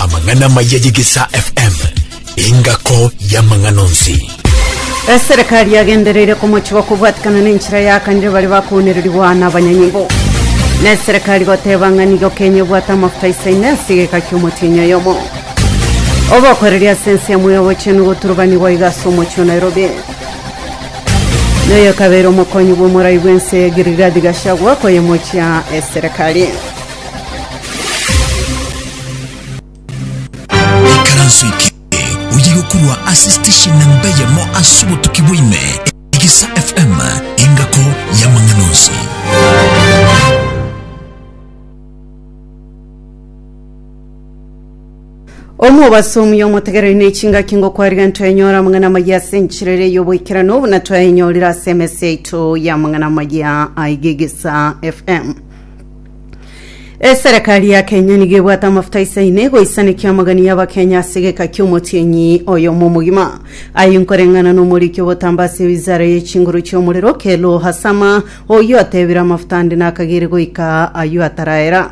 amang'ana amaya y'egesaa fm engako y'amang'ana onsi eserekari yagendereire komochiwa kobwatikana n'enchera yakanire bare bakoonererigwa na abanyanyimbo na eserekari goteba ng'a nigo kenya ebwate amafuta isaine ase egeka ki'omotienyi oyomo obokoreri ase ense yamwe y'obochenu goturubanigwa iga ase omochie o nairobi Na oyo akabeire omokonyi bw'omorai bw'ense ya Giligadi Gachagua koyemochia eserekari. Ikaranso eke oye gokurwa ase station namba eyemo ase obotuki bwaime Egeisa FM engako y'amang'ana onsi. omobaso omuya omotegereri na echingaki ngokwariga ntwenyora amang'ana amaya ase enchera ere y'oboikerano buna twayenyorire ase emesi yaito y'amang'ana amaya aigegesa fm eserekari ya kenya nigo ebwate amafuta isaine goisanekia amagani y'abakenya ase egeka ki'omotienyi oyo momogima aye nkoreng'ana n'omoriki obotamba ase wizara y'echinguru chi'omorero kelo hasama oyio atebire amafuta ande nakagere goika ayio ataraera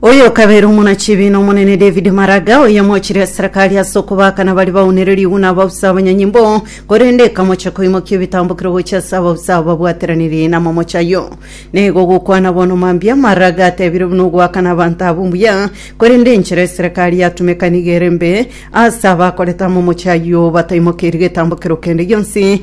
Oyokabere omonachibi n'Omonene David Maraga, oyomochirie eserekari ase okobakana baria baunererigwe na abausa abanyanyimbo, korende ekamocha koimokia ebitambokero gochia ase abausa abo babwateraniri n'amamocha ayio. Nigo ogokwana bono mambia, Maraga atebire buna ogoakana abanto abwo mbuya, korende enchera eserekari yatumeka nigo ere mbe ase abakorete amamocha ayio bataimokeiri getambokero kende gionsi,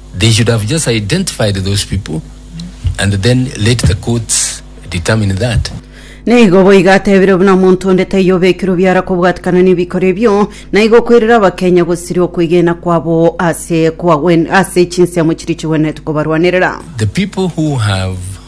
They should have just identified those people and then let the courts determine that. Naigo boigo atebire buna omonto onde taiyo obekirwe biara kobwatikana nebikoro ebio, naigo okoirera abakenya gosiria okwegena kwabo ase kwagwen ase chinsemo chiria chigwenerete kobarwanerera. The people who have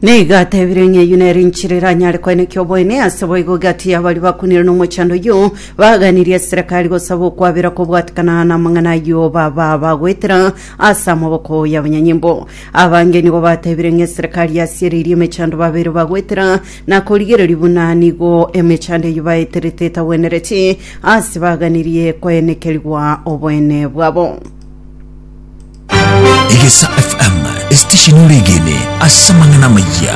Nigo atebire ng'a eyio nere enchera eranyare koenekia oboene, ase boigo egati y'abaria bakunire nomochando oyio baganirie eserekari gosaba okwabera kobwatekana namang'ana ayio baba bagoetera ase amaboko y'abanyanyimbo. Abange nigo batebire ng'a eserekari yasiereirie emechando babeire bagoetera na korigereria buna nigo emechando eyio baeterete etagwenereti ase baganirie koenekerigwa oboene bwabo. Egesa FM, esitesheni oregene ase amang'ana amayia.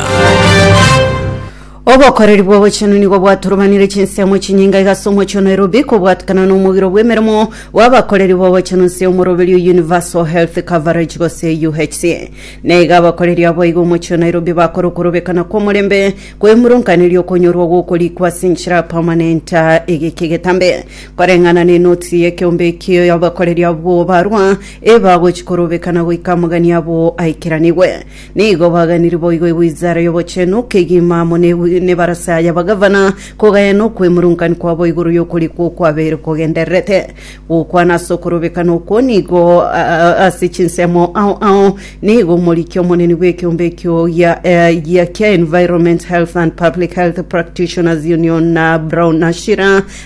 Obokoreri bw'obochenu nigo bwaturubanire chinsemo chinyinga igase omochie o Nairobi kobwatikana na omogiro bw'emeremo bw'abakoreri b'obochenu nse omoroberi o Universal Health Coverage gose UHC. Na iga abakoreri abo iga omochie o Nairobi bakore okorobekana kw'omorembe kw'emurunganeria okonyorwa gw'okorikwa ase enchera permanent egeke getambe. Koreng'ana nenotisi y'ekeombe ekio y'abakoreri abwo barwa, ebagochi korobekana goika amagani abo aikeranigwe. Nigo baganiri boigo egwizara y'obochenu kegima amo ne nebarasa y'abagavana, kogaya nokwemurungani kwabo igoro y'okori kwo kwabeire kogendererete. Gokwana ase okorobekana okwo nigo ase chinsemo ao ao nigo omoriki omonene bw'ekeombe ekio gia gia kia Environment Health and Public Health Practitioners Union, NABRAU, Nashira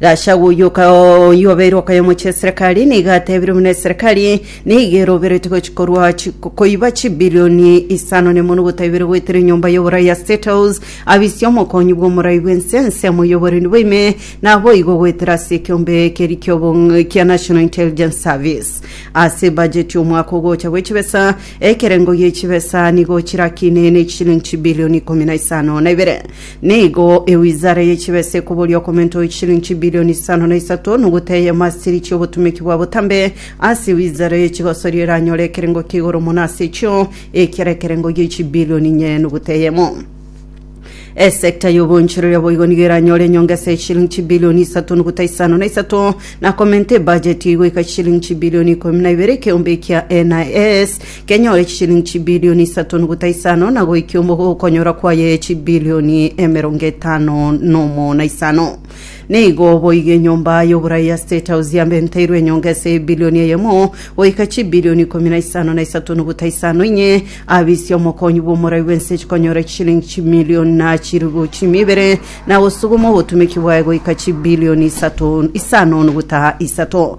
Gachagua oyio oka- oyio obeire okoyemo chi'eserekari nigo atebire buna eserekari nigo eroberetie gochi- korwa chi- ko- koiba chibilioni isano nemo nogotaibera goetera enyomba y'oborai ya State House abisie omokonyi bw'omorai bwense ensemo y'oborendi bwaime naboigo goetera ase ekiombe keri ki'obong- kia National Intelligence Service ase ebajeti y'omwaka ogocha bw'echibesa ekerengo gi'echibesa nigo chirakine ne chilingi chibilioni ikomi na isano na ibere Nigo ewizara ye chibesa ekoboria okomenta oye chishilinchi bilioni isano na isato nogutaya emasiri chi'obotumeki bwa botambe ase ewizara ye chigosoria eranyore ekerengo kia igoro mono ase echio, ekiara ekerengo gie chibilioni inye nogutaya eyemo. Esecta y'obonchoreria boigo nigo eranyore enyongesa ye chishilinchi bilioni isato nogutaya isano na isato, na komenta ebudget eye goika chishilinchi bilioni ikomi na ibere ekeombe ekia NIS, kenyore chishilingi chibilioni isato nogota isano, na goikia okonyora kwaye chibilioni emerongo etano nomo na isano. Nigo boigo enyomba y'oborai ya State House yabenteirwe enyonga ase ebilioni eyemo goika chibilioni ikomi na isano na isato nogota isano, inye abisia omokonyi bw'omorai bw'ense chikonyora chishilingi chimilioni na chiribu chiumi ibere, na gosuguma obotumeki bwaye goika chibilioni isato isano nogota isato.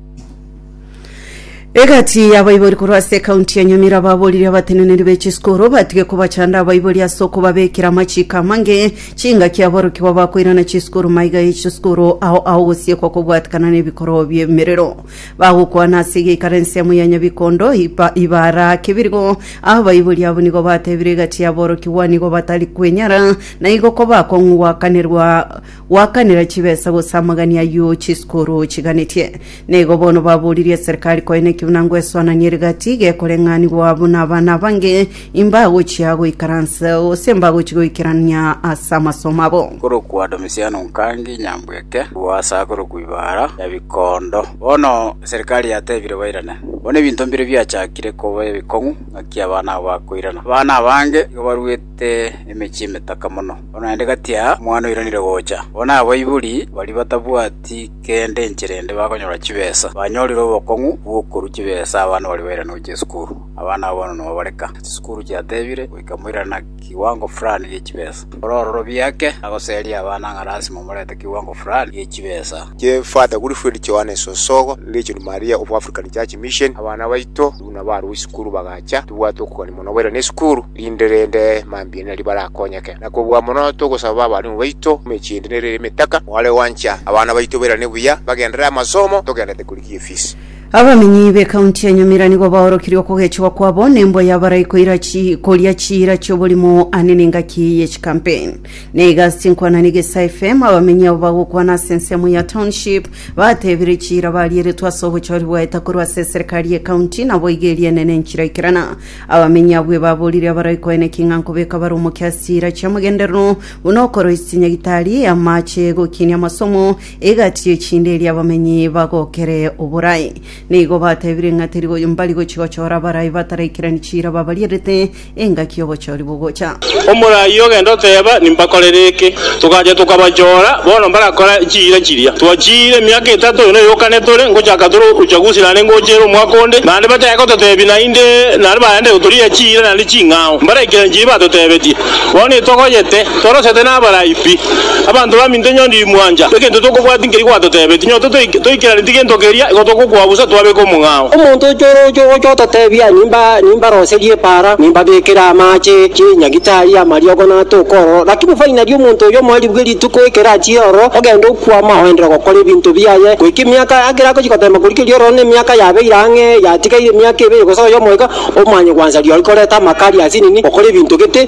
egati y'abaibori korwa ase ekaunti ya nyamira baborire abateneneri be chisukuru batige kobachanda abaibori ase okobabekera amachiko amange chingaki aborokigwa bakoirana chisukuru maiga ye chisukuru ao ao gosiekwa kobwatekana n'ebikorwa by'emerero bagokwana ase egeikara ensemo ya nyabikondo ipa- ibara kebirigo abaibori abo nigo batebire egati y'aborokigwa nigo batari kwenyara na igo kobakong'u gwakanerwa Goakanera chibesa gose amagani ayio chisikuru chiganetie. Nigo bono baboririe eserikari koina ekebuna ngo esoananie ere gati gekoreng'anigwa abwo na abana abange imbagochia goikaransa gose imbagochia goikerania ase amasomo abo. Korokwa Domisiano Nkangi Nyambweke, Lwasa korokwa Ibara ya Bikondo. Bono eserikari yatebire bairane. Bono ebinto mbire biachakire koba ebikong'u ng'aki abana abo bakoirana. Abana abange igo baruete. Ase emechie emetaka mono, bono naende gati aa omwana oiranire gocha. Bono abaibori baria batabwati kende enchera ende bakonyora chibesa, banyorire obokong'u bw'okorua chibesa abana baria bairanwe gochia esukuru. Abana aba bono nobareka, chisukuru chiatebire goika moirane na kiwango fulani gie chibesa. Ore ororo biake agoseria abana ng'a lasima omorete kiwango fulani gie chibesa. Kie Father Wilfred Johannes Osogo, Legion Maria of African Church Mission, abana baito. Buna barwa isukuru bagacha, tibwate okogania mono baire nesukuru, rinde rende mambia nari barakonyeke. Na kobua mono togosaba abalimu baito emechie ende nere ere emetaka, mware gwancha abana baito bairane buya, bagenderere amasomo, togenderete korigia efisi. Abamenyi be county ya Nyamira nigo baorokirie okogechigwa kwabo nembwa y'abaraiko irachi koria chiira chi'oborimo ane nengaki ye chicampaign. Nigo ase chinkwana nigo ase FM abamenyi abo bagokwana ase ensemo ya township batebire chira barieretwe ase obochori bwaeta korwa ase eserikari ye county nabo iga eriene ne enchira ikerana abamenyi abwo ebaborire abaroi koene king'a nkobeka bare omokia ase chira chiamogenderero buna okoroisia chinyagitari amache egokinia amasomo egati echinde eria abamenyi bagokere oborai nigo batebire ng'a teri mbari gochi gochora abarai bataraikirani chira babarierete engaki y'obochori bogocha. Omoraia ogenda oteeba, Nimbakorere eke. Togacha tokabachoora, bono mbarakora chiira chiria twachiire emiaka etato, oyo noyo okane tore ngochaka tore uchaguzi naende ngochiere omwaka onde, naende batae gototeebia naende naende baende gotoria chiira naende ching'ao, mbaraikera nchiire batoteebetie. Bono nitogoyete, torosete nabarai pi. Abanto baminto inwe ndiri mwancha, egento tokobwati nkeri gwatotebetie, nyo totoik toikeranetie gento keria, igo togokwa bosa twabeka omong'ao. Omonto ochooroche ogocha ototebia, Nimba nimbaroserie epaara, nimbabekere amaache, chinyagitari, amariogo, na ata okoororo, lakini fainali omonto oyio omoaribu bwe rituko ekero achire ororo, ogenda okwama, oendera ogokora ebinto biaye, goika emiaka ekero agochia goteema koria keria ororo nemiaka yabeire ang'e, yatigaire emiaka ebere gose oyomo iga, omanye gwansa riao rikoreta amaka aria ase nini, okore ebinto gete.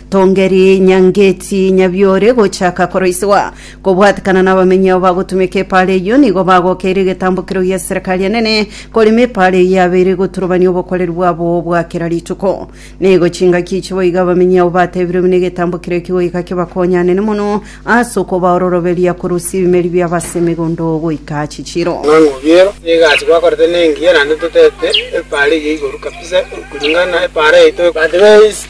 Tongeri Nyangeti Nyabiore gochaka koroisigwa kobwatekana n'abamenyi abo bagotumeka epaara eyio nigo bagokeire egetambokero gia Serikali enene korema epaara eyio yabeire egoturubania obokoreri bwabo bwa kera rituko. Nigo chingaki echi boigo abamenyi abo batebirie buna egetambokero eki goika kebakonyanene mono ase okobaa ororoberia korwa ase ebimeri biabo ase emegondo goika chichiro. Ng'ang'u obiero n'egasi gwakorete nengiya naende toteete epaara eyio igoro kabisa koringana na epaara yaito. But there is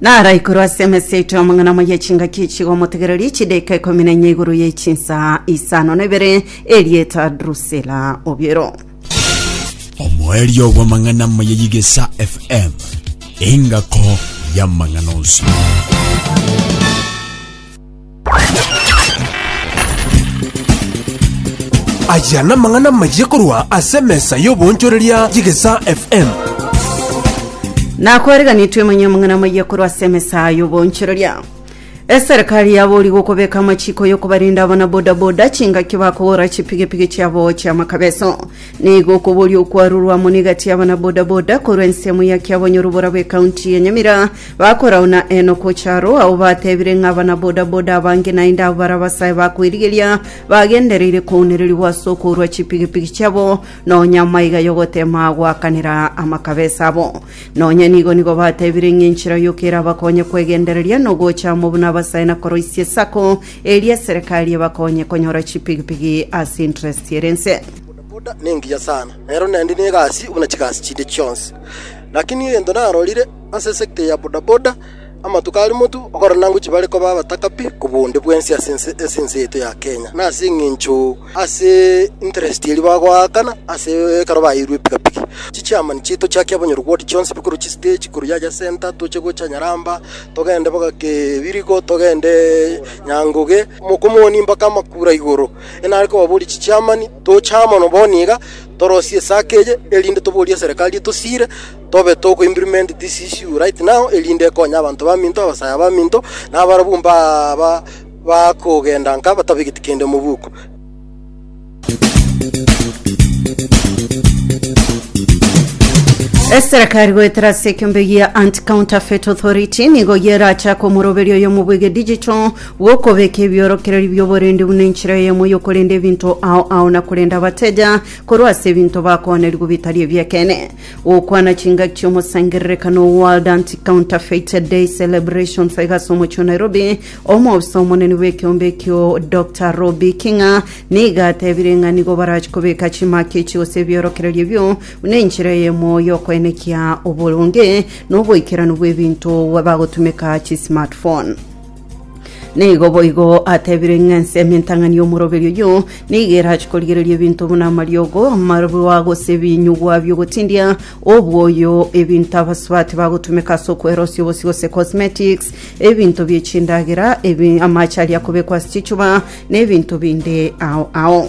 Naraikorwe ase emesa yaito y'amang'ana amo y'echingaki echigo omotegereri echidaika ikomi na enya igoro ye chinsaa isano na ibere, erieta Drusila obiero. omoerio bw'amang'ana amo ya yigesa fm engako y'amang'ana onsi Aya namang'ana amayia korwa ase emesa y'oboonchoreria y'Egesaa FM. nakwareganitwe manya amang'ana amayia korwa ase emesa y'oboonchoreria eserikari yabori gokobeka amachiko yokobarinda abana bodaboda chingaki bakogora chipigipigi chiabo chiamakabeso nigo okoboria okwarurwa amo negati y'abana bodaboda korwa ensemo ya kiabonyorobora bw'ekaunti ya nyamira Bakorauna enoko charo ao batebire ng'a abanabodaboda abange naende abwo bare abasae ba kwerigeria bagendereire kounererigwa ase okourwa chipigipigi chiabo nonya amaiga y'ogotema goakanera amakabesa abo. Nonya nigo nigo batebire ng'a enchera yoka erabakonye kwegendereria nogocha amo buna abasae na koroisia esako eria eserekari ebakonye konyora chipigipigi ase interest ere ense. Bodaboda nengiya sana, nero naende negasi buna chigasi chinde chionsi. Lakini egento narorire, Ase esekta ya bodaboda, amatuko a Limuru ogoro na Anguchi bare koba abatakabi kobua onde bwensi ase ase ense yaito ya Kenya. Na ase eng'encho ase interest eria bagoakana ase ekero baeirwe epikapiki, chichiamani chiaito chiakia abanyoro ward chionsi bikorwa chistage korwa yacha center toche gocha Nyaramba, togende mpaka Kebirigo, togende Nyangoge, Mokomoni mpaka Makura igoro. Enare kobaboria chichiamani, toche amo na bono iga torosie esako eye erinde toborie eserekari etosiire, Tobe togo implement this issue right now erinde ekonye abanto baminto, abasaya baminto, na abarabwo mbaba bakogenda nka batabegeti kende mobuko. Eserekari goetera ase ekiombe gia Anti-Counterfeit Authority nigo gerachake omoroberio oyomo bw'ege digital bw'okobeka ebiorokereri bi'oborende buna enchera eyemo y'okorenda ebinto ao ao na korenda abateja korwa ase ebinto bakoonerigwa bitari ebi'ekeene. Gokwana chingaki chi'omosangererekano o World Anti-Counterfeit Day Celebrations iga ase omochie o Nairobi, omobisa omonene bw'ekeombe ekio Dr. Robbie King'a nigo atebire ng'a nigo barachie kobeka chimaki echi gose ebiorokererio ebio buna enchera eyemo y'okoenekia oboronge na oboikeranu bw'ebinto bagotumeka chismartphone. Nigo boigo atebire ng'a ense y'emintang'ani y'omoroberi oyio nigo erache korigereria ebinto buna amariogo, amarwa, gose ebinyugwa bi'ogotindia, obwoyo, ebinto abasubati bagotumeka ase okwerosia obosie gose cosmetics, ebinto bie chindagera, ebi- amache aria akobekwa ase chichuba, na ebinto binde ao ao.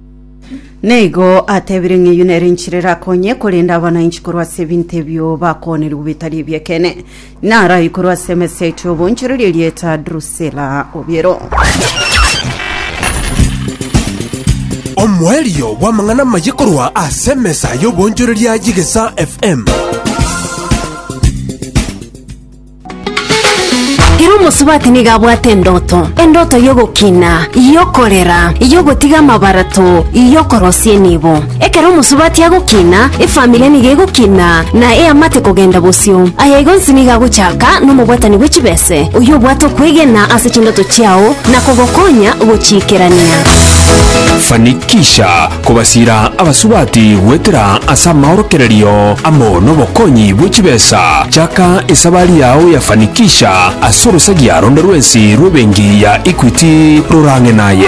Naigo atebire ng'a eyio nere enchera erakonye korenda abananchi korwa ase ebinto ebio bakoonerigwe bitari ebi'ekeene. Narai korwa ase emesa yaito y'obonchoreri erieta Drusila obiero. Omoerio bw'amang'ana amaye korwa ase emesa y'obonchoreria y'Egesaa FM. Ere omosubati nigo abwate endoto, endoto y'ogokina, y'okorera, y'ogotiga amabarato, y'okorosia enibo. Ekero omosubati agokina, efamiri nigo egokina na eamate kogenda bosio. Aya igo onsi nigo agochaka nomobwatani bwe chibese, oyio obwate okwegena ase chindoto chiao na kogokonya gochiikerania. Fanikisha kobasiira abasubati goetera ase amaorokererio amo nobokonyi bwe chibesa, chaka esabari yao ya fanikisha ase orosagia ronde rwensi rw'ebenki ya Equity rorang'e naye.